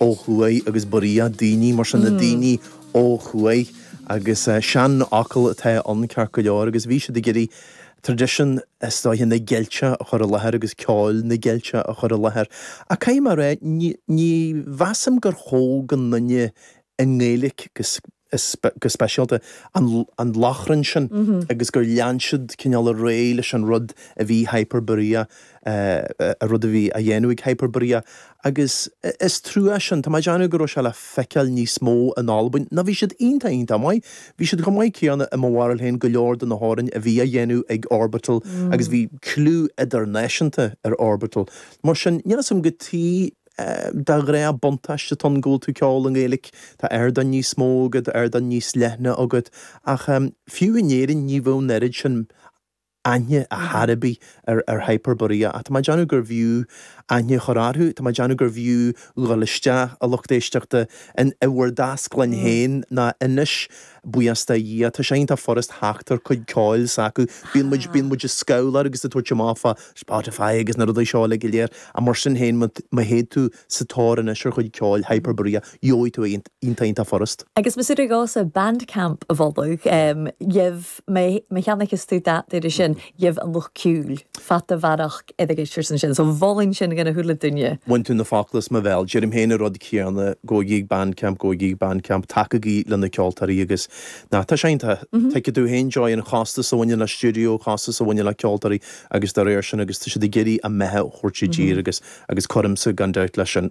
ó thuaidh agus buridhe daoine, mar sin, na daoine ó thuaidh agus seanfhocal atá ann ceart go leor agus bhí siad ag iarraidh tradition is dóiche na Gaeilge a chur i láthair agus ceol na Gaeilge a chur i láthair ach caithfidh mé a rá ní mheasaim gur cheol go ndearna i nGaeilic agus is, go speisialta, an Lochrann sin agus gur lean siad cineál ar aghaidh leis an rud a bhí Hyperborea, an rud a bhí á dhéanamh ag Hyperborea agus is trua sin, tá mé ag déanamh go raibh sé le feiceáil níos mó in Albain nó bhí siad iontach iontach maith, bhí siad chomh maith céanna i mo bharúil féin go leor de na hamhráin a bhí á dhéanamh ag Orbital agus bhí cliú idirnáisiúnta ar Orbital mar sin níl 'fhios a'm go Tá, go raibh buntáiste cionn go bhfuil tú ceol i nGaeilge, tá ardán níos mó agat, ardán níos leithne agat, ach fiú in Éirinn ní bheadh an oiread sin aithne ar chor ar bith ar Hyperborea ach tá mé ag déanamh gurbh fhiú aithne a chur orthu, tá mé ag déanamh gurbh fhiú dhul isteach, a lucht éisteachta, in bhur dtaisclann féin nó anois Buíochas le Dhia, tá sé iontach furast theacht ar chuid ceoil s'acu. Bíonn muid, bíonn muid ag scamhladh agus ag tabhairt amach fá Spotify agus na rudaí seo uilig go léir, ach mar sin féin, má, má théid tú sa tóir anois ar chuid ceoil Hyperborea, gheobhaidh tú é, iontach, iontach furast. Agus más é do chás é Bandcamp a mholadh, gheibh, má, má cheannaíos tú dada air sin, gheibh an lucht ceoil, fad ar m'eolas, oideachais ar son sin. So mholfainn sin don uile dhuine. Bhain tú na focla as mo bhéal. Deirim féin an rud céanna, gabhaigí ag Bandcamp, gabhaigí ag Bandcamp, tacaigí le na ceoltóirí agus ná, tá sé iontach, tuigfidh tú féin an costas a bhaineann le stiúideo, costas a bhaineann le ceoltóirí agus dá réir sin agus tá siad ag iarraidh a mbeatha a thabhairt i dtír agus, agus cuirimse go deimhin leis sin.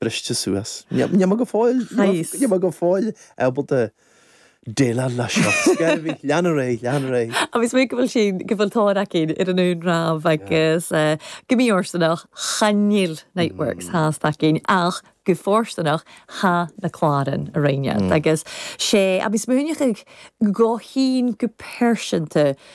briste suas. Níl mé go fóill, níl mé go fóill ábalta déileáil leis seo. Ach, lean ar aghaidh, lean ar aghaidh. Is minic go bhfuil sin, go bhfuil dán againn ar an iomramh agus go mí-fhortúnach, chan fhuil Niteworks thart againn ach go fortúnach, tha na cláran againn agus sé, a bhí smaoinigh go go thín go pearsanta,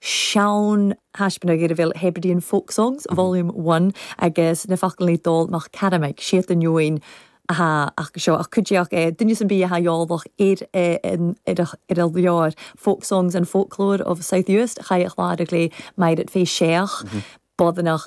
Sean thaispeánadh idir bhéil Hebridean Folk Songs, Volume One, agus na focail Dál mac Caramaic, Siat inniúin athá ach seo ach cuid déach é, duine san bith athá eolach ar ar a leabhar Folk Songs and Folklore of South Uist Chaigh a Chláir a ghlaodh Maighread fé Séach, Bodhannach.